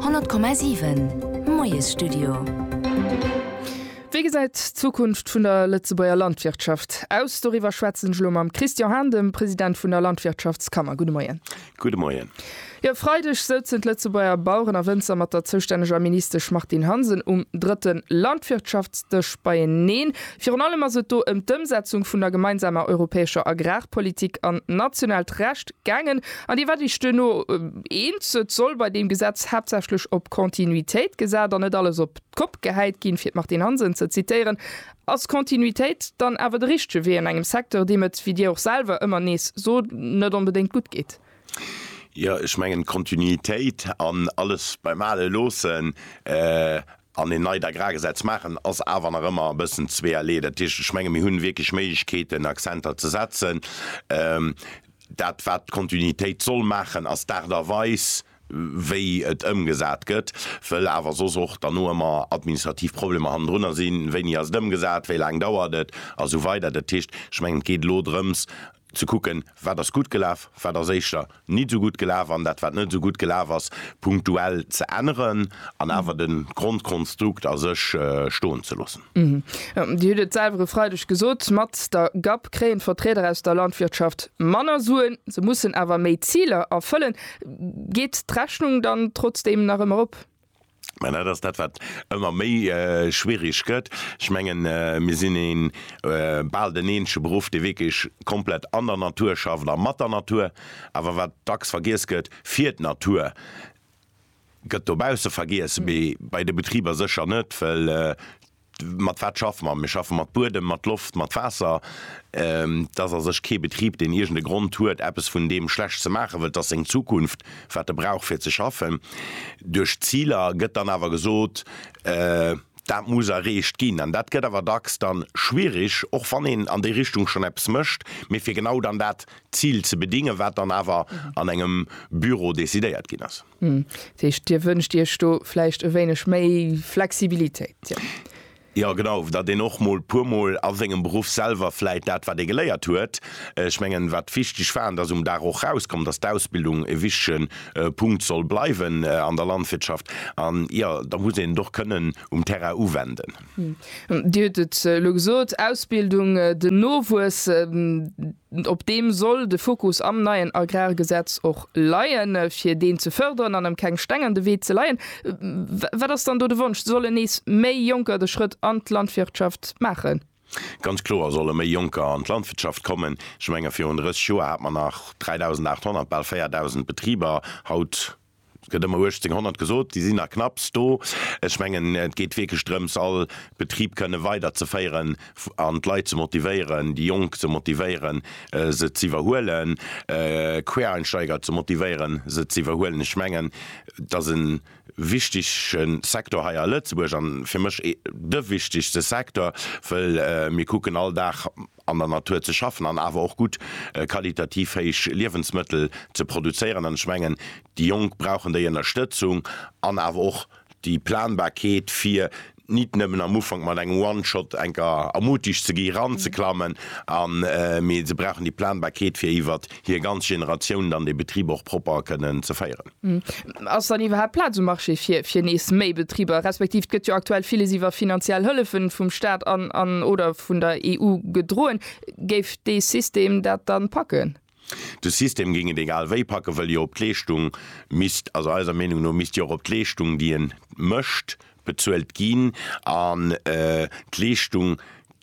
100,7 Moiesstudio. Wéi gesäit d'Zukunft vun der Lëtzebuerger Landwirtschaft aus? Doriwwer schwätzen ech elo mam Christian Hahn, dem President vun der Landwirtschaftskammer. Gudde Moien. Gudde Moien. Jo, e Freideg souzen d'Lëtzebuerger Baueren a Wënzer mat der zoustänneger Ministesch Martine Hansen um drëtte Landwirtschaftsdësch beieneen. Virun allem ass et do ëm d'Ëmsetzung vun der gemeinsamer europäescher Agrarpolitik an nationaalt Recht Gaangen, an Dir waart Iech duerno eens, et soll bei deem Gesetz haaptsächlech op Continuitéit gesat an net alles op d'Kopp gehäit ginn, fir d'Martine Hansen ze zitieren. Ass Continuitéit dann awer de richtege Wee an engem Secteur, deem et, wéi Dir och selwer ëmmer nees sot, net onbedéngt gutt geet? Jo, ech mengen, Continuitéit an alles beim Ale loossen an een neit Agrargesetz maachen, ass awer nach ëmmer e bëssen zweeërlee. Dat heescht, ech menge mir hunn wierklech Méiglechkeeten Accenter ze setzen. Dat wat d'Kontinuitéit soll maachen ass d'Aart a Weis wéi et ëmgesat gëtt, wëll awer soss och derno ëmmer administrativ Problemer hannendrunner sinn, wéini ass et ëmgesat, wéi laang dauert et a sou weider. Dat heescht, ech mengen et geet elo drëms ze kucken, wat ass gutt gelaf, wat ass éischter nit esou gutt gelaf, an dat wat net esou gutt gelaf ass, punktuell ze änneren an awer de Grondkonstrukt a sech stoen ze loossen. Dir hutt et selwer e Freideg gesot, mat der GAP kréien d'Vertrieder aus der Landwirtschaft manner Suen, se mussen awer méi Ziler erfëllen. Geet d'Rechnung dann trotzdeem nach ëmmer op? Mä dat ass dat, wat ëmmer méi schwierig gëtt. Ech mengen, mir sinn ee bal den eenzege Beruff, dee wierklech komplett an der Natur schafft a mat der Natur. Awer wat dacks vergiess gëtt, fir d'Natur gëtt dobausse vergiess, mee bei de Betriber sécher net, well Mat wat schaffe mer? Mir schaffe mat Buedem, mat Loft, mat Waasser. Et ass a sech kee Betrib, deen iergend e Grond huet, eppes vun deem schlecht ze maachen, wëll et ass seng Zukunft, wat e brauch fir ze schaffen. Duerch d'Ziler gëtt dann awer gesot, dat muss erreecht ginn. An dat gëtt awer dacks dann schwierig, och wann een an déi Richtung schonn eppes mécht, mee fir genau dann dat Zil ze bedingen, wat dann awer an engem Büro decidéiert ginn ass. Hm, dat heescht, Dir wënscht Iech do vläicht e wéineg méi Flexibilitéit, jo. Jo, genau, datt een och mol puermol a sengem Beruff selwer vläicht dat, wat ee geléiert huet, ech mengen, wat wichteg war, an dat ass um Dag och rauskom, datt d'Ausbildung e wichtige Punkt soll bleiwen an der Landwirtschaft, an jo, da muss een et och kënnen um Terrain uwenden. Dir hutt et elo gesot, Ausbildung, den Nowuess. Op deem soll de Fokus am neien Agrargesetz och leien, fir deen ze fërderen an em keng Steng an de Wee ze leien. Wat ass dann do de Wonsch? Sollen nees méi Jonker de Schrëtt an d'Landwirtschaft maachen? Ganz kloer solle méi Jonker an d'Landwirtschaft kommen. Ech menge virun 30 Joer hat mer nach 3.800, bal 4.000 Betriber. Haut Et gëtt ëmmer 1800 gesot, déi sinn nach knapps do. Ech mengen, et geet wierklech drëms, all Betrib kënne weiderzeféieren an d'Leit ze motivéieren, déi Jonk ze motivéieren, se z'iwwerhuelen, Quereinsteiger ze motivéieren, se z'iwwerhuelen. Ech mengen, et ass e wichtege Secteur hei a Lëtzebuerg, a fir mech de wichtegste Secteur, wëll mir kucken all Dag, an der Natur ze schaffen an awer och gutt, qualitativ héich Liewensmëttel ze produzéieren. An ech mengen, déi Jonk brauchen déi Ënnerstëtzung an awer och déi Planbarkeet, fir nit nëmmen am Ufank mat engem One-Shot enker ermutigt ze gi ranzeklammen, an, mee se brauchen déi Planbarkeet, fir iwwert hir ganz Generatioun dann dee Betrib och propper kënnen ze féieren. Ass dann iwwerhaapt Plaz um Marché fir nees méi Betriber, respektiv gëtt jo aktuell villes iwwer finanziell Hëllefe vum Staat an, oder vun der EU gedroen? Géif dee System dat dann packen? De System géing et egal wéi packen, wëll jo op d'Leeschtung misst, also eiser Meenung no misst jo och op d'Leeschtung, déi en mécht, bezuelt ginn. An d'Leeschtung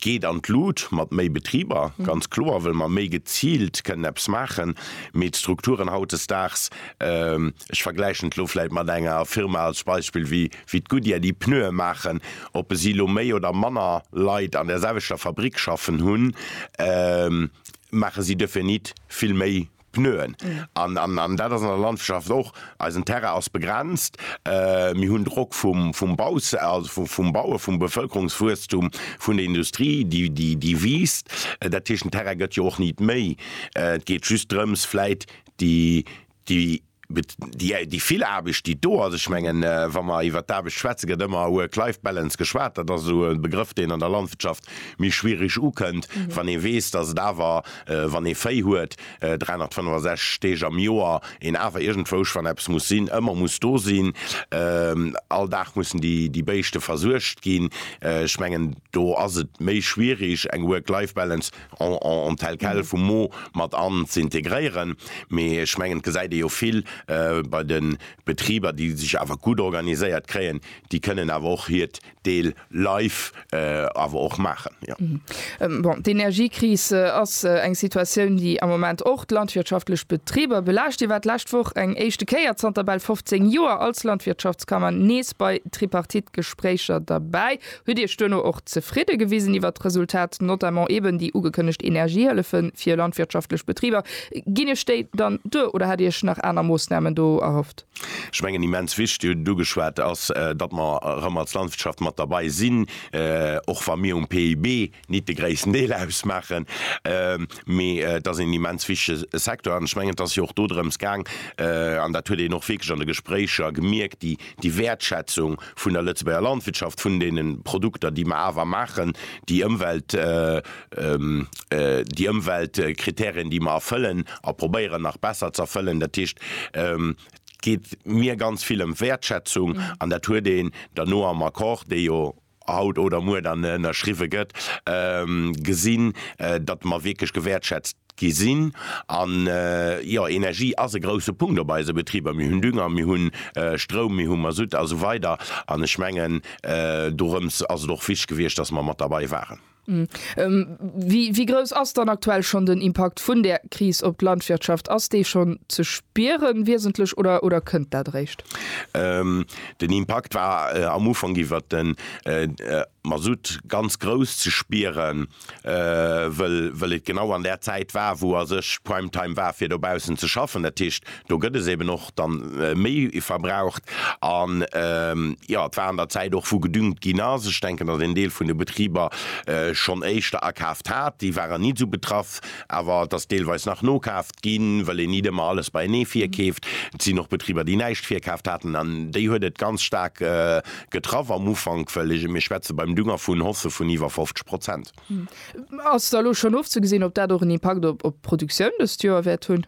Geet an d'Lut mat méi Betriber, ganz kloer, wëll mer méi geziilt kënnen eppes maachen. Mee d'Strukturen hautdesdaags, ech vergläichen et elo vläit mat enger Firma als Beispill wéi d'Goodyear, déi Pneue maachen, ob se elo méi oder manner Leit an där selwechter Fabrik schaffen hunn, maache si definitt vill méi Pneuen. An, an, an dat ass an der Landwirtschaft och, eisen Terrain ass begrenzt, mir hunn Drock vum, vum Baus, also vum Bauen, vum Bevölkerungswuesstum, vun der Industrie, déi, déi, déi wiisst. Dat heescht, den Terrain gëtt jo och nit méi. Et geet just drëms vläit déi, déi. Gutt, déi, déi vill Aarbecht, déi do ass, ech mengen, wa mer iwwert d'Aarbecht schwätzen, gëtt ëmmer Work-Life-Balance geschwat. Dat ass esou e Begrëff, deen an der Landwirtschaft méi schwierig ukënnt, wann ee weess, dass et awer, wann ee Véi huet, 365 Deeg am Joer een awer iergendwousch, wann eppes muss sinn, ëmmer muss do sinn. All Dag mussen déi, déi Béischte versuergt ginn. Ech mengen, do ass et méi schwierig, eng Work-Life-Balance en tel quel vum Mo mat an ze integréieren. Mee ech mengen, et gesäit ee jo vill bei de Betriber, déi sech awer gutt organiséiert kréien, déi kënnen awer och hiert Deel live awer och maachen, jo. Bon, d'Energiekris ass eng Situatioun, déi am Moment och d'landwirtschaftlech Betriber belaascht. Dir waart d'lescht Woch eng éischte Kéier zanter bal 15 Joer als Landwirtschaftskammer nees bei Tripartite-Gespréicher derbäi. Hutt Dir Iech duerno och zefridde gewisen iwwert d'Resultat, notamment eben déi ugekënnegt Energiehëllefe fir landwirtschaftlech Betriber? Ginn Iech déi dann duer oder hat Dir Iech nach aner Moossnamen do erhofft? Ech mengen, immens wichtig, hutt et ugeschwat, ass, datt mer erëm als Landwirtschaft mat derbei sinn, och wa mir um PIB nit de gréissten Deel ausmaachen, mee et ass een immens wichtege Secteur. An ech mengen, et ass jo och dodrëms gaang, an dat huet een och wierklech an de Gespréicher gemierkt, déi, déi Wäertschätzung vun der Lëtzebuerger Landwirtschaft, vun deenen Produkter, déi mer awer maachen, déi Ëmwelt, déi Ëmweltkriterien, déi mer erfëllen a probéieren nach besser ze erfëllen. Dat heescht, et geet mir ganz vill ëm Wäertschätzung an dat huet een dann no am Accord, dee jo haut oder muer dann ënnerschriwwe gëtt, gesinn, datt mer wierklech gewäertschätzt gi sinn. An, jo, Energie ass e grouse Punkt op eise Betriber. Mir hunn Dünger, mir hu Stroum, mir hu Masutt a sou weider. An ech mengen, dorëms ass et och wichteg gewiescht, datt mer mat derbei waren. Wéi grouss ass dann aktuell schonn den Impakt vun där Kris op d'Landwirtschaft? Ass dee schonn ze spieren, wiesentlech, oder kënnt dat eréischt? Den Impakt war am Ufank iwwert den Masutt ganz grouss ze spieren, wëll et genau an där Zäit war, wou a sech Primetime war fir dobaussen ze schaffen. Dat heescht, do gëtt es eben och dann méi verbraucht an jo et war an der Zäit och wou gedüngt ginn ass. Ech denken datt een Deel vun de Betriber schonn éischter akaaft hat, déi waren nit esou betraff, awer et ass deelweis nach nokaaft ginn, well een nit ëmmer alles beienee virkeeft. Et sinn och Betriber déi näischt virkaaft haten an déi huet et ganz staark getraff am Ufank, well mir schwätze beim Dünger vun Hausse vun iwwer 50 Prozent. Ass da elo schonn ofzegesinn ob dat och en Impakt op d'Produktioun dëst Joer wäert hunn?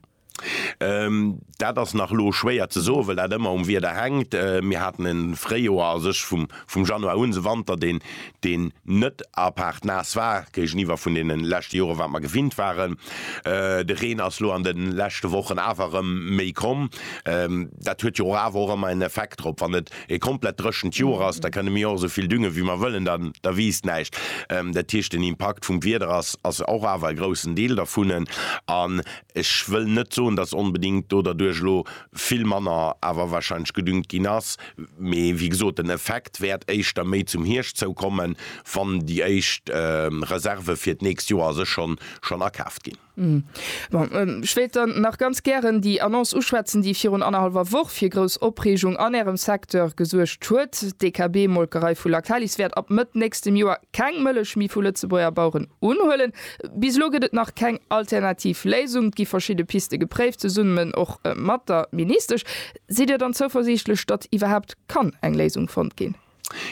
Dat ass nach elo schwéier ze soen, wëll dat ëmmer um Wieder hänkt. Mir haten e Fréijoer a sech vum, vum Januar un, se Wanter, deen, deen net apaart naass war, géigeniwwer vun deene leschte Jore wat mer gewinnt waren. De Reen ass elo an de leschte Wochen awer erëm méi komm. Dat huet jo och awer och ëmmer en Effekt drop. Wann et e komplett dréchent Joer ass, da kënne mir och esou vill düngen, wéi mer wëllen, da, da wiisst näischt. Dat heescht, den Impakt vum Wieder ass, ass och awer e groussen Deel dervun. An Ech wëll net soen, dass onbedéngt do derduerch elo vill manner awer wahrscheinlech gedüngt ginn ass, mee wéi gesot, den Effekt wäert éischter méi zum Hierscht zou kommen, wann déi éischt Reserve fir d'nächst Joer a sech schonn schonn akaaft ginn. Bon, ech wéilt dann nach ganz gären déi Annonce uschwätzen, déi virun annerhallwer Woch fir grouss Opreegung an Ärem Secteur gesuergt huet. D'DKB-Molkerei vu Lactalis wäert ab Mëtt nächstem Joer keng Mëllech méi vu Lëtzebuerger Baueren unhuelen. Bis elo gëtt et nach keng alternativ Léisung. Et gi verschidde Piste gepréift, zesummen och mat der Ministesch. Sidd Dir dann zouversiichtlech, datt iwwerhaapt kann eng Léisung fonnt ginn?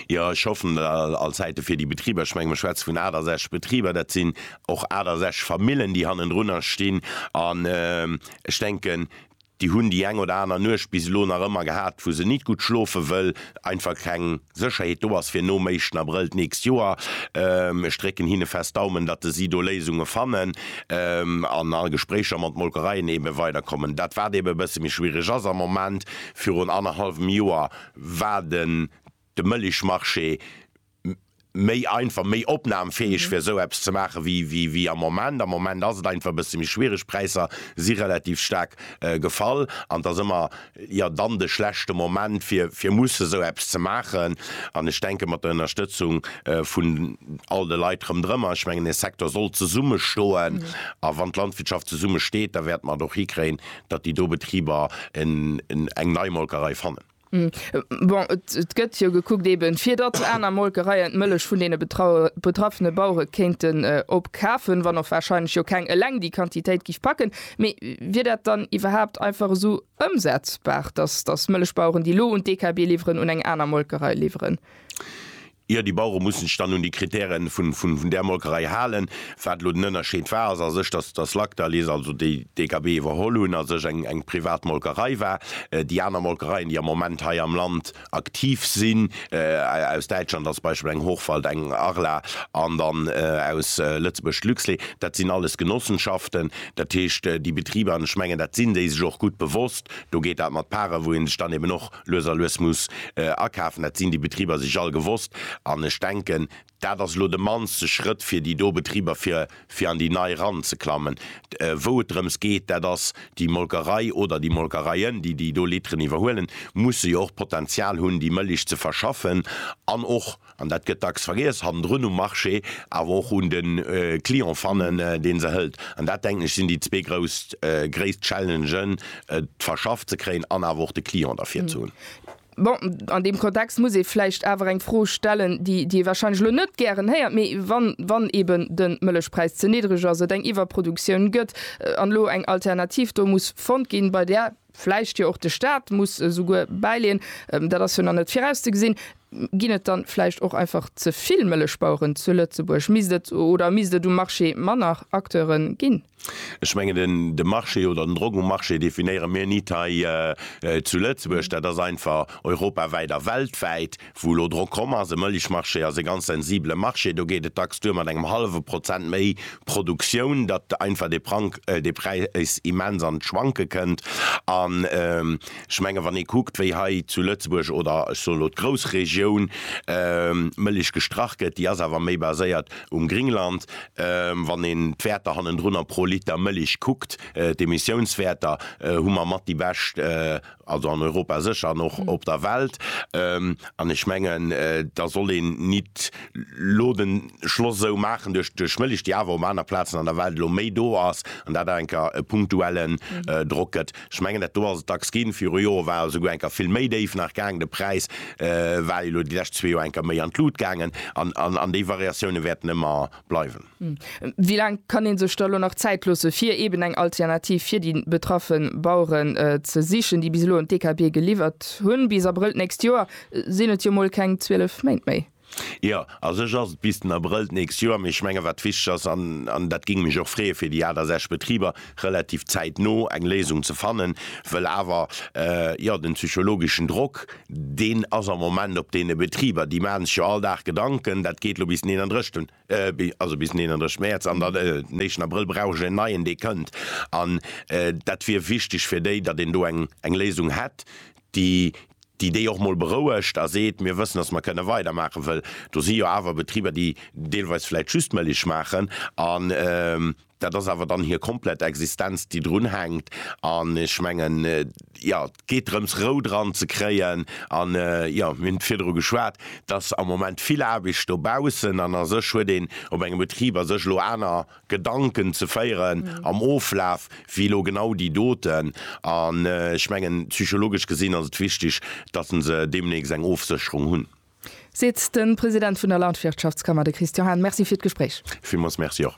Jo, ech hoffen dat. All Zäite fir déi Betriber. Ech menge mir schwätze vun 68 Betriber. Dat sinn och 68 Famillen, déi hannendrunner stinn. An ech denken, Déi hunn déi eng oder aner Nuecht bis elo nach ëmmer gehat, wou se nit gutt schlofen, wëll einfach keng Sécherheet do ass fir nom éischten Abrëll d'nächst Joer. Ech drécken hinne fest Daumen, datt si do Léisunge fannen an a Gespréicher mat Molkereien eebe weiderkommen. Dat wat eebe e bësse méi schwiereg ass am Moment, virun annerhallwem Joer war den de Mëllechmarché méi einfach, méi opnahmfähig fir esou eppes ze maache wéi wéi am Moment. Am Moment ass et einfach e bësse méi schwierig, Präisser si relativ staark gefall an et ass ëmmer jo dann de schlechte Moment fir fir musse esou eppes ze maachen. An ech denke mat der Ënnerstëtzung vun all de Leit rëmdrëmmer, ech mengen de Secteur soll zesummestoen a wann d'Landwirtschaft zesummesteet, da wäerte mer et och hikréien, datt déi do Betriber eng nei Molkerei fannen. Bon, et gëtt jo gekuckt, eeben fir datt aner Molkereien d'Mëllech vun deene betraffene Bauere kéinten opkafen, wann och warscheinlech jo keng eleng déi Quantitéit géif packen. Mee wier dat dann iwwerhaapt einfach esou ëmsetzbar, datt Mëllechbaueren, déi elo un d'DKB liwweren, un eng aner Molkerei liwweren? Jo, déi Bauere mussen sech dann un déi Kritäre vun där Molkerei halen. Wat elo den Ënnerscheed war, ass a sech, dass dass Lactalis, also déi DKB iwwerholl hunn, a sech eng eng privat Molkerei war. Déi aner Molkereien, déi am Moment hei am Land aktiv sinn, aus Däitschland als Beispill eng Hochwald, eng Arla an dann aus Lëtzebuerg d'Luxlait, dat sinn alles Genossenschaften. Dat heescht, déi Betriber, an ech mengen, dat sinn déi sech och gutt bewosst, do geet dat mat Pare wou ee sech dann eben och Lues a lues muss akafen, dat sinn déi Betriber sech all gewosst. An ech denken, dat ass elo de mannste Schrëtt fir déi do Betriber, fir fir an déi nei eranzeklammen. Wou et drëms geet, dat ass déi Molkerei oder déi Molkereien, déi déi do Litteren iwwerhuelen, musse jo och d'Potenzial hunn, déi Mëlich ze verschaffen an och An dat gëtt dacks vergiess, hannendrun um Marché, awer och un de Client fannen, dee se hëlt. An dat, denken ech, sinn déi zwee grouss gréisst Challengen, et verschafft ze kréien an awer och de Client derfir ze hunn. Bon, an deem Kontext muss ee vläicht awer eng Fro stellen, déi ee warscheinlech elo net gären héiert, mee wann, wann eeben de Mëllechpräis ze niddreg ass, et eng Iwwerproduktioun gëtt an elo eng Alternativ do muss fonnt ginn, bei där, vläicht jo och de Stat muss esouguer bäileeën, dat ass jo nach net virauszegesinn, ginn et dann vläicht och einfach ze vill Mëllechbaueren zu Lëtzebuerg? Misst et oder misst et um Marché manner Acteure ginn? Ech mengen den de Marché oder den Drock um Marché definéiere mir nit hei zu Lëtzebuerg, dat ass einfach europawäit a weltwäit. Wou elo Drock komm ass, e Mëllechmarché ass e ganz sensibele Marché, do geet et dacks duer mat engem hallwe Prozent méi Produktioun, datt einfach de Prank, de Präis immens an d'Schwanke kënnt. An ech menge wann ee kuckt, wéi hei zu Lëtzebuerg oder ech soen elo d'Groussregioun Mëllech gestrach gëtt, déi ass awer méi baséiert um Gringland, wann een d'Wäerter hannendrunner pro Liter Mëllech kuckt, d'Emissiounswäerter, hu mer mat déi bescht also an Europa sécher an och op der Welt, an ech mengen, da soll een nit lo de Schloss sou maachen duerch duerch Mëlich, déi awer op aner Plazen an der Welt lo méi do ass an dat awer enker e punktuellen Drock gëtt. Ech mengen, dat do ass et dacks ginn, viru Jore war e souguer enker vill méi déif nach gaangen, de Präis war jo lo déi lescht zwee Joer enker méi an d'Lut gaangen an an an déi Variatiounen wäerten ëmmer bleiwen. Wéi laang kann ee sech da elo nach Zäit loossen, fir eben eng Alternativ fir déi betraffe Baueren ze sichen, déi bis elo un d'EKB geliwwert hunn? Bis Abrëll d'nächst Joer sinn et jo mol keng 12 Méint méi. Jo, a sech ass et bis den Abrëll d'nächst Joer, mee ech menge wat wichteg ass, an dat géing mech och freeë fir déi aner sechs Betriber, relativ zäitno eng Léisung ze fannen, wëll awer, jo, den psychologeschen Drock, deen ass am Moment op deene Betriber, déi maachen sech jo all Dag Gedanken, dat geet elo bis den 31. Also bis den 31 Mäerz. An dann den éischten Abrëll brauch ech en neien, dee kënnt. An dat wier wichteg fir déi, datt een do eng Léisung hätt, déi déi déi och mol berouegt a seet, mir wëssen, datt mer kënne weidermaachen. Well do si jo awer Betriber, déi deelweis vläicht just Mëlich maachen an, Dat ass awer dann hir komplett Existenz, déi drun hänkt. An ech mengen, jo, et geet drëms, Rou dran ze kréien. An, jo, mir hunn virdru geschwat, et ass am Moment vill Aarbecht dobaussen. An a sech huet een op engem Betrib a sech elo aner Gedanken ze féieren am Oflaf wéi elo genau déi doten. An ech mengen, psychologesch gesinn ass et wichteg, datt se deemnächst eng Ofsécherung hunn. Seet de President vun der Landwirtschaftskammer, de Christian Hahn. Merci fir d'Gespréich. Villmools Merci och.